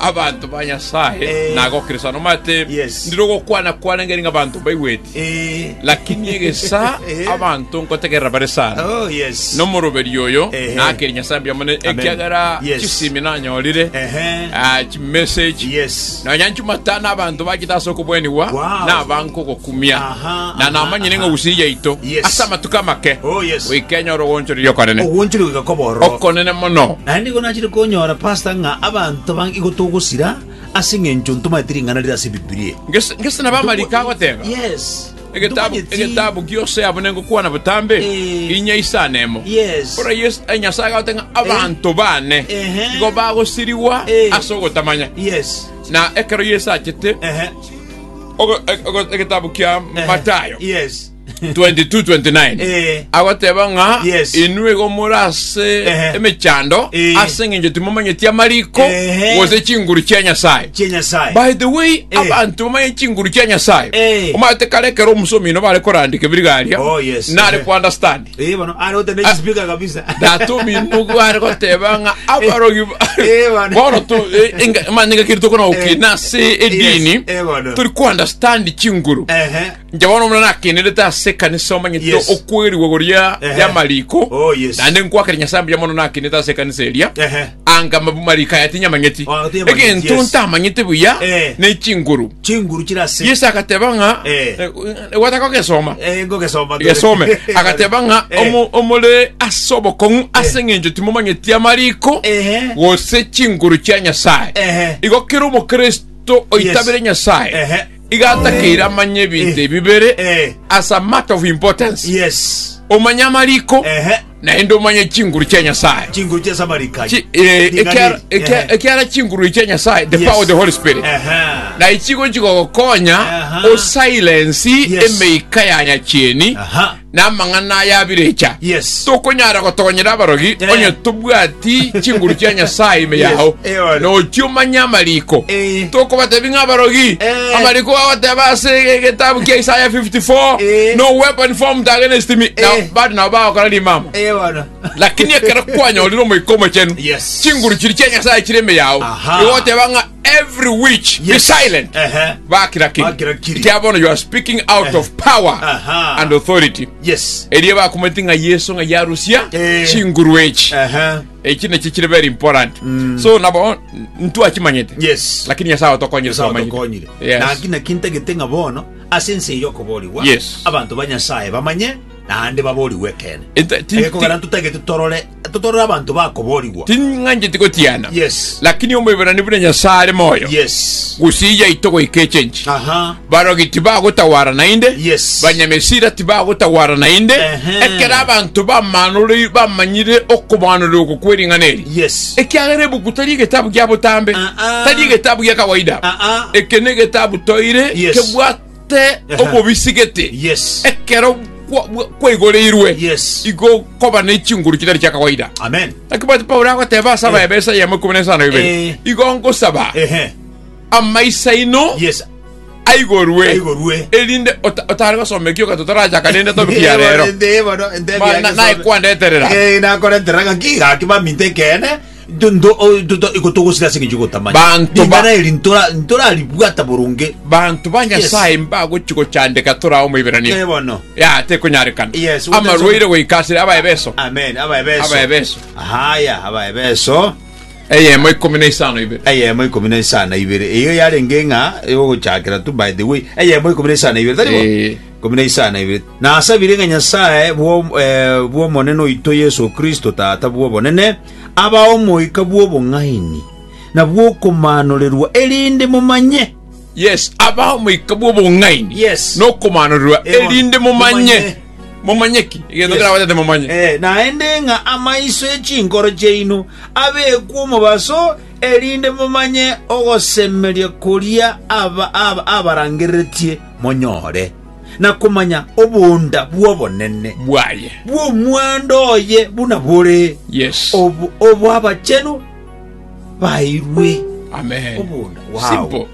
Abanto ba Nyasae Eh. nagokirisana omate, Yes. ndire ogokwana kwane ng'eri ng'abanto mbaigweti, Eh. lakini egesa Eh. abanto nkotegerera bare sana. Oh, yes. nomoroberi oyo Ehe. nakeri nyasaye mbuya mone Amen. ekiagera Yes. chisimi nanyorire Ehe. ah, chimeseji Yes. nonya nchumatana abanto bachita ase okobwenigwa Wow. nabanko kumia, na namanyire ng'a gusii yaito ase amatuko amake goika enyore ogoonchoreria okonene, okonene mono. Naende nigo nachire konyora, Pastor, ng'a abanto banga igo togosira ase engencho ntomanyeti ring'ana rire ase Ebibilia. Gese nabo amariko agoteba, Egetabu gionsi abune ngokwana botambe, inya isano emo. Oraie Nyasae agote ng'a abanto baane igo bagosirigwa ase ogotamanya, na ekero Yeso achete. ogo- ogo- egetabu kia matayo Yes. 22-29 Eh. agoteba ng'a Yes. inwe igo more ase Ehe. emechando Eh. ase eng'encho timomanyeti amariko Ehe. gose chinguru chia nyasaye Chie Nyasaye. by the way Eh. abanto bamanye chinguru chia nyasaye Eh. omate kare ekero omusomino bare korandika ebirigaria Oh, yes. nare Ehe. kuunderstand Eh, bono are gotenda Ah. chispeaker kabisa. Datobi nugu are goteba ng'a abarogi ba- Eh, bana. bono tu eh, enga- manya ngaki tokona Eh. gokina ase edini Yes, eh, bana. turi ku understand chinguru Ehe. nja bono muna nakenerete ase kanisa omanyete Yes. okwerigwa goria Ehe. yamariko Oh, yes. nande nkwakera nyasambe ya mono nakenerete ase kanisa eria Ehe. Anga mabu marika aya tinyamanyeti. Ah, tinyamanyeti, Egento yes. ntamanyete buya Eh. ne chinguru. chinguru chiri ase Yesu agateba ng'a Eh. eh, gwataka ogesoma. Eh, ngogesoma ndore. Gesome agateba ng'a Eh. omo- omore ase obokong'u ase eng'encho timomanyeti amariko Ehe. gose chinguru chia Nyasaye. Ehe. Igo kera omokristo oitabire Yes. Nyasaye Ehe. igatakeire amanye ebinto Eh. ebibere Eh. as a matter of importance. yes Omanye amariko Ehe. Naende omanye chinguru chia Nyasaye. Chinguru chia Samarika. Chi, eh, ekiara, ekiara, ekiara chinguru chia Nyasaye, the yes. power of the Holy Spirit. Aha. Na ichigo chigogokonya o silence yes. emeika ya nyachieni. Aha. Na mang'ana ya birecha. Yes. Tokonyara gotogonyera abarogi, yeah. onye tobwati chinguru chia Nyasaye ime yes. yao. Nochi omanye amariko. Tokobatebi ng'a abarogi. Amariko gagoteba ase egetabu kia Isaya 54, No weapon formed against me. Na bado nabo bagokora rimama. Lakini ekero kwanyorire Omoika Omochenu, chinguru chiria chia Nyasae chire ime yao, igoteba ng'a every witch be silent. Bakira ki? Ekiagera bono you are speaking out of power and authority. Erio bakomoeti ng'a Yeso ng'a yarusia chinguru echi. echi nechi chiri very important Mm. so nabo ntwachimanyete yes lakini nyasaye otokonyire Nyasaye twamanyire. otokonyire Yes. naki naki ntagete ng'a bono ase ense eye okoborigwa Yes. abanto ba nyasaye bamanye naende baborigwe ekene Ente- ti- egekogera ti- ntotagete torore totorore abanto bakoborigwa ting'ancheti gotiana yes lakini omoiberani buna nyasaye are moyo yes gusija ito goika echenji aha Barogi tibagotagwara naende, Yes. banyamesira tibagotagwara naende, Ehe. ekero abanto bamaanore- bamanyire okobaanora oko kw'ering'ana eri. Yes. Ekiagera ebuku tari egetabu gia botambe, Ah, ah. tari egetabu gia kawaida. Ah, ah. Eke negetabu toire Yes. kebwate Aha. obobisi gete. Yes. Ekero kwa- bwa- kwaigoreirwe, Yes. igo koba ne chinguru chitari chia kawaida. Amen. Lakini bwati Paulo agoteba asaba Eh. ebesa yamo ikumi na esano Eh. ibere. Igo ngosaba Ehe. amaiso aino yes, aigorwe aigorwe. erinde ota- otare gosoma ekioka totarachaka nende topic ya rero Ma- na- naye kwandeterera. nakoreterera ngaki gaki baminto ekeene ikotogosira ase eng'encho gotamanya Banto ba- ring'ana eri ntora- ntoraribwata boronge banto ba nyasaye mbagochi gochandeka torao moiberania Eh, bono ya tekonyarekana Yes, what amarwaire goikasire abaebeso amen abaebeso Abaebeso. haya abaebeso Eyemo ikomi na isano ibere. Eyemo ikomi na isano na ibere. Eyio yarenge ng'a y'ogochakera tu, by the way. Eyemo ikomi na isano na ibere, tari bo? Ee. Ikomi na isano na ibere. Nasabire ng'a Nyasae bw'om- eh, bw'Omonene oito Yeso Kristo, Tata bw'obonene, abae omoika bw'obong'aini na bw'okomaanoregwa, erinde momanye Yes, aba omoika bw'obong'aini Yes. na okomanorirwa, Ewa. erinde momanye. Momanye. Momanye ki? Egento Yes. kerabatete momanye. Eh, naende ng'a amaiso e chinkoro chiaino abekwe omobaso, erinde momanye ogosemeria koria aba- aba- abarangereretie monyore, na komanya obonda bw'obonene Bwaye. bw'omwando oye buna bore Yes. obo- obw'abachenu bairwe obondo bwao.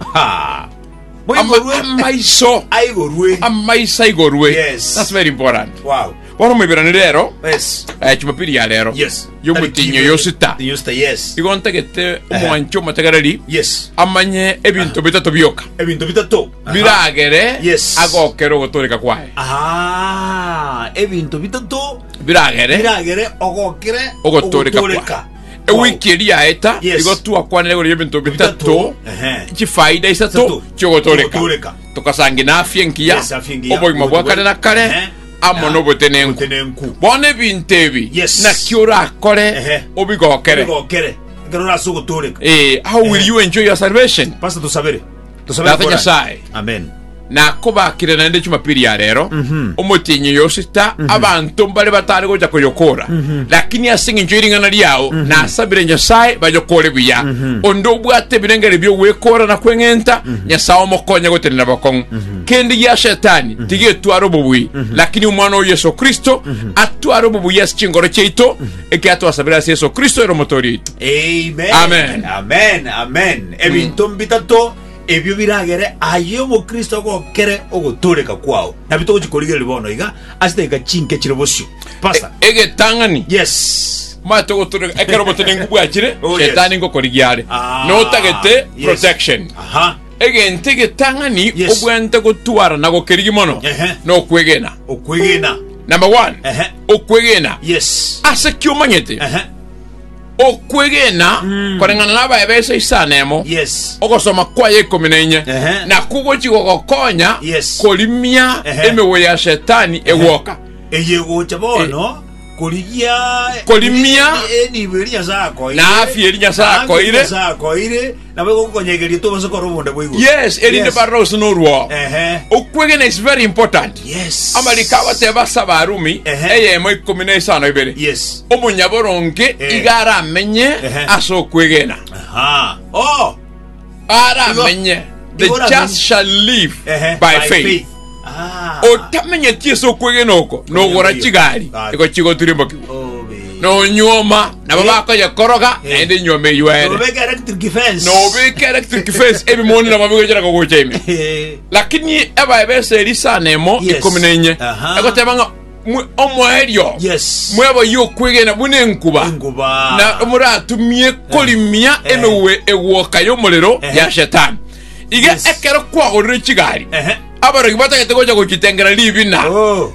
Boigorwe amaiso aigorwe. Amaiso aigorwe. Yes. That's very important. Wow. Bono moiberane rero. Yes. Eh, Jumapili ya rero. Yes. Yomutinyo yosita. Yosita, yes. Igo ntagete omwancho omotegereri. Yes. Amanye ebinto bitato bioka. Ebinto bitato. Biragere. Yes. Agokere ogotoreka kwaye. Aha. Ebinto bitato. Biragere. Biragere ogokere ogotoreka. Ogotoreka. Ewiki eria yaeta, Yes. igo twakwanire igoro y'ebinto bitato, Bitato, ehe. chifaida isato Isato, chiogotoreka. chiogotoreka. Tukasangina afya engiya, Yes, afya engiya, obogima bwa obogima kare na bwa- kare, ehe. amo Na- n'obotenenku. obotenenku. Bono ebinto ebi Yes. naki orakore Ehe. obigokere. Gokere. Ekero orase ogotoreka. Eh, how will you enjoy your salvation? Pastor tusabere. Tosobere Tata korana. Nyasae, Amen. nakobakire naende Jumapili ya rero Mhm. omotienyi oyo osita abanto mbare batare gocha koyokora lakini ase eng'encho y'ering'ana riao nasabire nyasae bayokore buya onde obwate ebirengeri bi'ogwekora na kweng'enta nyasae omokonye gotenena bokong'u kende gia shetani tigetwara obobui lakini omwana o yesu kristo atware obobui ase chingoro chiaito ekiagera twasabire ase Yeso Kristo ere Omotoori oito. Amen. Amen. Amen. Amen. Ebinto mbitato ebio biragere aye omokristo agokere ogotooreka kwao. Nabio togochi korigereria bono iga ase edagika chinke chire bosio. Pastor. E- Egetang'ani. Yes. Mate ogotoreka ekero obotenenku bwachire Oh, yes. shetani ngokorigiare. Ah, notagete yes. protection Aha. Egento egetang'ani Yes. obwenerete gotwarana gokerigia mono Ehe. nokwegena Okwegena. namba one Ehe. okwegena Yes. ase ki omanyete Ehe. okwegena koreng'ana na abaebesa isano emo Yes. ogosoma kwaye ikomi na inye Ehe. nakwo gochi gogokonya Yes. korimia Ehe. emegoye ya shetani egwoka Eye gocha bono korigia Korimia. enibo eri Nyasae akoire, Na afya eri Nyasae na afya eri akoire. Nyasae akoire, nabo egokonyegeria tobase kora obonda bwa igoro. yes erinde barore gose norwao Ehe. okwegena is very important Yes. amariko agoteba ase abarumi Ehe. eyemo ikomi na isano ibere Yes. omonyaboronge Eh. iga aramenye Ehe. ase okwegena Aha. Oh. baramenye, the Igo oramenye. just shall live Ehe, by faith. Ah. Otamenyeti ase okwegena oko, nogora Oyo. chigari, Ah. igo chigotirimbokigwa. Obe. Nonyuoma, nabo Eh. bakoyekoroga, Eh. naende enyuoma eyuere. Nobeke electric fence. Nobeka electric fence, ebimoni nabo bigochera kogocha ime. Eh. Lakini ebaebesa eri sana emo, Yes. ikumi na inye. Aha. Egoteba ng'a, mwe omoerio Yes. mwebaye okwegena buna enkuba Enguba. na moratumie korimia Eh. emewe egwoka y'omorero Eh. ya shetani iga Yes. ekero kwagorire chigari Ehe. abarogi batagete gocha gochitengera ribina Oh.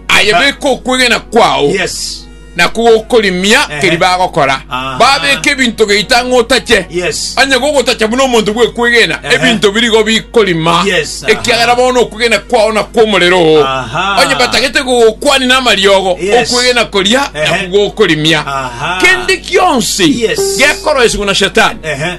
aye beka okwegena kwao Yes. Naki gokorimia Ehe. keria bagokora, Aha. babeke ebinto geita ng'a otache. Yes. Onye gogotacha buna omonto bw'ekwegena, Ehe. ebinto birigo bikorima, Yes, aha. ekiagera bono okwegena kwao nakw'omorero oo. Aha. Onye batagete gogokwania n'amariogo, Yes. okwegena koria Ehe. nakwo gokorimia. Aha. Kende gionsi Yes. gekoroiswa na Shetani. Ehe.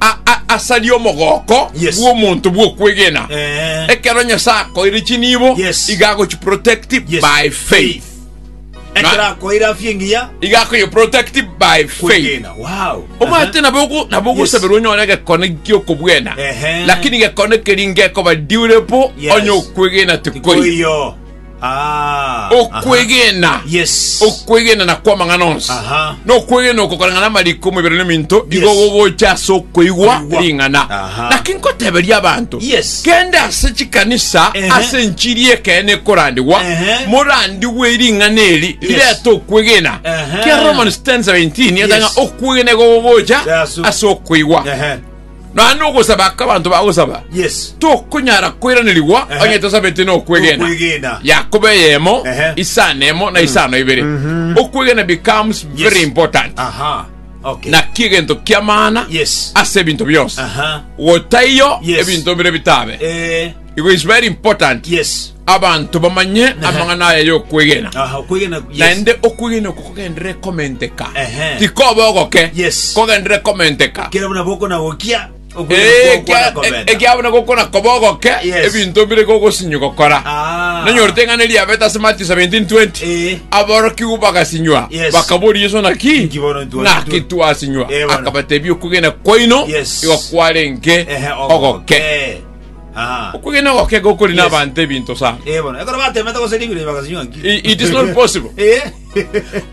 a- a- asaria omogoko Yes. bw'omonto bw'okwegena Eh. ekero nyasae akoire chinibo Yes. iga agochiprotect Yes. by faith ekero akoire afya engiya iga akoyeprotect by faith kwegena wow omate nabo ogo- nabo Yes. ogosabera onyore gekone giokobwena Ehe. lakini gekone keri ngekoba durable Yes. onye okwegena tikori Koiyo. Ah. Okwegena. Aha. Yes. Okwegena na kwa mang'ana onsi. Aha. Na okwegena oko koreng'ana amariko omobere na ominto yes. igo gogocha ase okoigwa ring'ana. Naki nkoteberia abanto. Yes. Kende ase chikanisa uh -huh. ase enchiri ekene korandigwa uh -huh. morandigwe ring'ana eri rirete okwegena. Uh -huh. Kia Romans 10:17 yes. okwegena igo gogocha yes. ase okoigwa. Uh -huh. Nonya nogosaba aka abanto bagosaba Yes. tokonyara koiranerigwa Ehe. onye tosabete nokwegena Nokwegena. yakobo eyemo Ehe. isano emo na isano ibere Mhm. okwegena becomes Yes. very important Aha. Okay. naki egento kiamana Yes. ase ebinto bionsi Aha. gotaiyo Yes. ebinto bire bitabe Eh. it is very important Yes. abanto bamanye amang'ana aya y'okwegena. Aha, okwegena, yes. Naende okwegena oko kogenderere komenteka, Ehe. tikoba ogoke, Yes. kogenderere komenteka. Kera buna bokona gokia, okwegena Eh, kwao kwana kia- komenta. ekiabona gokona koba ogoke Yes. ebinto bire gogosinyi gokora Ah. nanyorete ng'ana eriabete ase matthew 17 20 Eh. aborokigwa bagasinywa Yes. bakabori yeso naki Inki bono ntwa- naki twasinywa Eh, bono. akabatebia okugena kwaino Yes. igo kwarenge Ehe, ogoke. ogoke Aha. Okwegena goke iga okori na Yes. abanto ebinto sana. Eh, bono. Ekero batemete gose ribiro bakasinywa nki. I- it is not possible. Eh.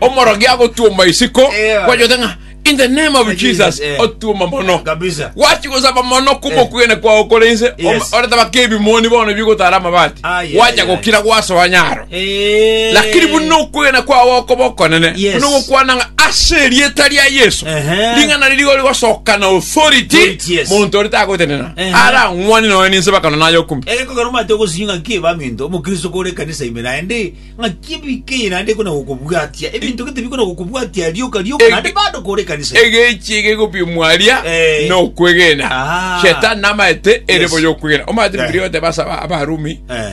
omorogi agotuoma isiko Eh, bana. kwajote ng'a in the name of Jesus, jesus eh. otuoma mono Kabisa. wachi gosaba mono kuma Eh. okwegena kwao korense Yes. oretaba kebimoni bono bigotara amabati Ah, yeah, wacha yeah, gokira gwasoa nyaro Eh. Lakini buna okwegena kwao gokoba okonene Yes. buna ogokwana ng'a ase erieta ria yesu Ehe. ring'ana riria rigori gosoka na authority Authority, yes. monto ore tagotenena Ehe. ara ang'wane noe ninse bakano naye okumi Ere kogera omate ogosunywa ng'a ki baminto omokristo kore ekanisa ime naende ng'a ki ebika eye naende ekona gokobwatia ebinto gete bikona gokobwatia rioka rioka Ege- naende bado kore ekanisa ime. egechi egegopimwaria Eh. na okwegena Ah. shetani namaete ere Yes. boyo okwegena omate Right. bibilia goteba ase aba- abarumi Eh.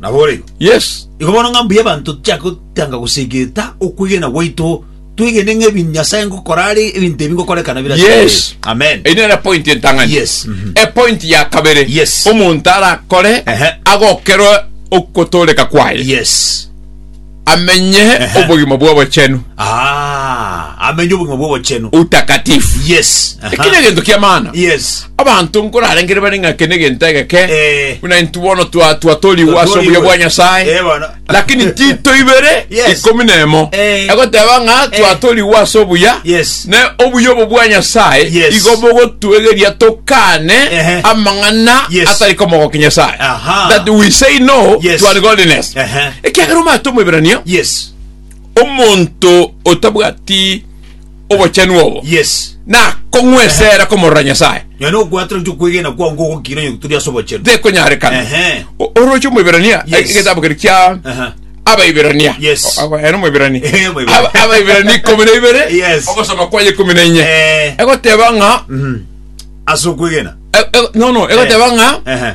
Naboreigo. Yes. Igo bono ng'a mbuya abanto tochake gotanga gosegeta okwegena gwaito, twegene ng'a ebi Nyasae ngokora are ebinto ebi ngokorekana bire ase Yes. Nyasae. Amen. Eyi nere point entang'ani Yes, mhm. epoint ya kabere Yes. omonto arakore Ehe. agokerwe okotoreka kwaye Yes. amenye Ehe. obogima bw'obochenu Ah, amenye obogima bw'obochenu utakatifu yes Aha. ekine egento ki'amana yes abanto nkorarengere bare ng'a eke negento egeke Eh. buna intu bono twa- twatoriwe ase obuya bwa nyasaye Eh, bono. lakini tito ibere Yes. ikumi na emo Eh. egoteba ng'a Eh. twatoriwe ase obuya Yes. ne obuya obo bwa nyasaye Yes. igo bogotwegeria tokane Ehe. amang'ana Yes. atari komogoki nyasaye Aha. that we say no Yes. to ungodliness Ehe. Ekiagera omanyete Omoebrania, Yes. omonto otabwati obochenu obo, Yes. nakong'wesera komorora Nyasae. Nonye na okwatera gochia okwegena kwao nigo ogokina onye turi ase obochenu. Tekonyarekana. Ehe. O- Oroche Omoebrania, Yes. egetabu keria kia Aha. Abaebrania. Yes. O- aba- ere Omoebrania. Eh, Omoebrania. Aba- Abaebrania ikomi na ibere, Yes. ogosoma kwaye ikomi na inye. Eh. Egoteba ng'a, Mhm. Ase okwegena. e- e- no, no, egoteba ng'a, Ehe.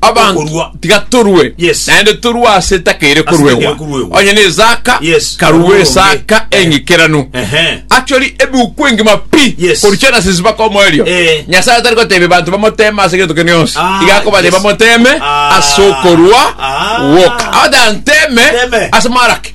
abanto Okorua. tiga torue Yes. naende torue ase etakeire Ase etakeire koruegwa koruegwa. onye nezaka Yes, karue karue esaka onge. Eh. engekeranu Ehe. actually ebuku engima pi Yes. kori genesis mpaka omoerio Eh. nyasaye atari gotebia banto bamoteme ase egento kende yonsi Ah, iga akobate yes. bamoteme Ah. ase okorua Ah. gwoka abata nteme Teme. ase maraki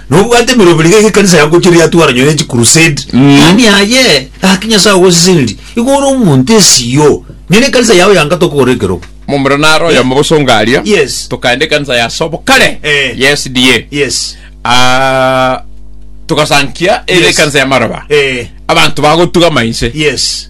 Nobwate emerobi niga egekanisa yagochire yatwara nyore chi crusade yaani aye gaki nyasae ogoseseniri igo ore omonto esiyo nyore ekanisa yao yanga tokogora ekerogo Momura naro oyomo bosonga aria. Yes. Tokaenda ekanisa ya sobo kare. Eh. Ya SDA. yes Ah, togasankia ere Yes. ekanisa ya maroba. Eh. Abanto bagotuga mainse. yes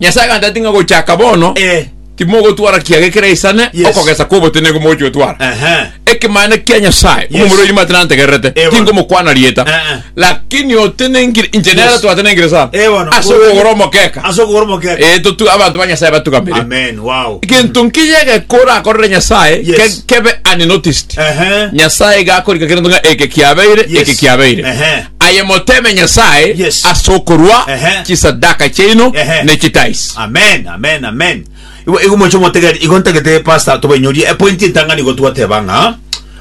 Nyasae agantera ati ng'a gochaka bono Eh. timogotwara kiaga ekere isane Yes. okogesa kwa obotenenku mogochigotwara. Ehe. Ekemanera kia Nyasae Yes. omomura oino mate nantegererete Eh, bono. tingomokwana rieta Eh, eh. lakini otenengire inche nere Yes. twatenengire sana Eh, bono. ase okogora omokeka Ase okogora omokeka. Eh, totu abanto ba Nyasae batugamire Amen. Wow. gento nkiya gekora akorere Nyasae Yes. ke- kebe unnoticed Ehe. Nyasae gakorika kere ng'a eke kiabeire Yes. eke kiabeire Ehe. Aye moteme Nyasae Yes. ase okorua Ehe. chisadaka chiaino Ehe. ne chitaisi. amen amen amen igo igo moche motegeri igo ntagete pastor tobainyorie epointi entang'ani igo twateba ng'a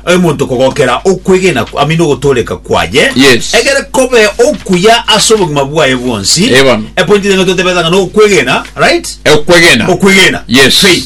omonto kogokera okwegena ku- amina ogotoreka kwaye Yes. egere kobe okuya ase obogima bwaye bwonsi Ewan. epointi ere nigo totebete ng'a nokwegena right Okwegena. okwegena Yes. faith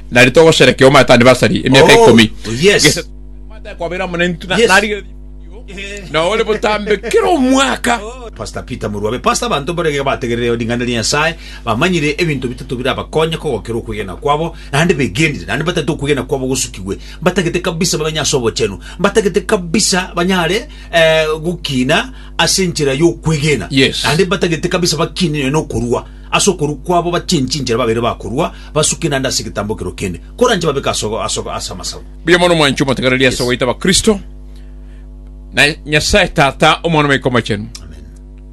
Nari togosherekea Omanto Anniversary emiaka ikomi. Oh, yes. Gese Omanto aye kwabeire amo naintwe na Yes. narigeretie ebidio na ore botambe kera omwaka. Pastor Peter Muruabe. Pastor abanto mbore iga bategerere ring'ana ria Nyasae, bamanyire ebinto bitato birabakonye kogokera okwegena kwabo, naende begenire, naende mbatagete okwegena kwabo gosukigwe, mbatagete kabisa bamenye ase obochenu, mbatagete kabisa banyare eh, gokina ase enchera y'okwegena, Yes. naende mbatagete kabisa bakinire nokorua. Ase okorua kwabo bachenche inchera babeire bakorua, basuke naende ase egetambo ekerwa kende, koranche babeke as'ogo ase amasagu. Mbuya mono mwanchi omotegereria ase ogoita Abakristo, na Nyasae Tata, Omwana, Omoika Omochenu,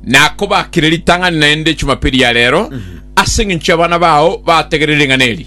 nakobakire ritang'ani naende Chumapili ya rero, ase engencho y'abana bao bategereri ring'ana eri.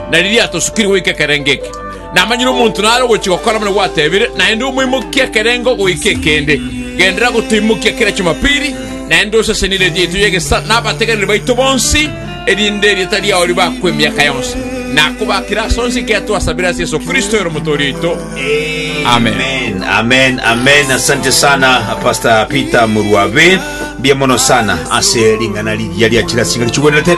na riria atosukire goika ekerengo eke. Namanyire omonto nare ogochia gokora buna gwatebire, naende omoimokie ekerengo goika ekende. Genderera gotoimokia kera Chumapili, naende osesenie erieta yaito y'egesaku n'abategeneri baito bonsi, erinde erieta riao ribakwe emiaka yonsi. Nakobakire ase onsi ekiagera twasabire ase Yeso Kristo ere Omotooria oito. Amen. Amen, amen, amen. Asante sana Pastor Peter Murwabe. Mbuya mono sana ase ring'ana riria ria chirasinga richigwenerete.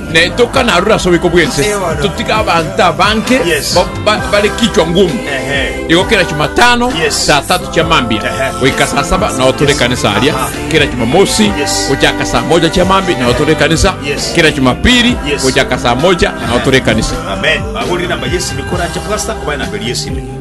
Na etokane aroro ase oboiko bw'ense, totige abanto abange bare kichwa ngumu. Igo kera Chumatano saa tatu chia mambia goika saa saba nao tore ekanisa aria, kera Chumamosi gochaka saa mocha chia mambia nao tore ekanisa, kera Chumapiri gochaka saa mocha nao tore ekanisa.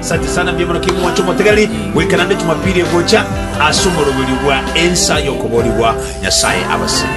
Asante sana mbuya mono kegima mwanche omotegereri goika naende Jumapili egocha ase omoroberio bwa ensa y'okoboorigwa Nyasae abasibie.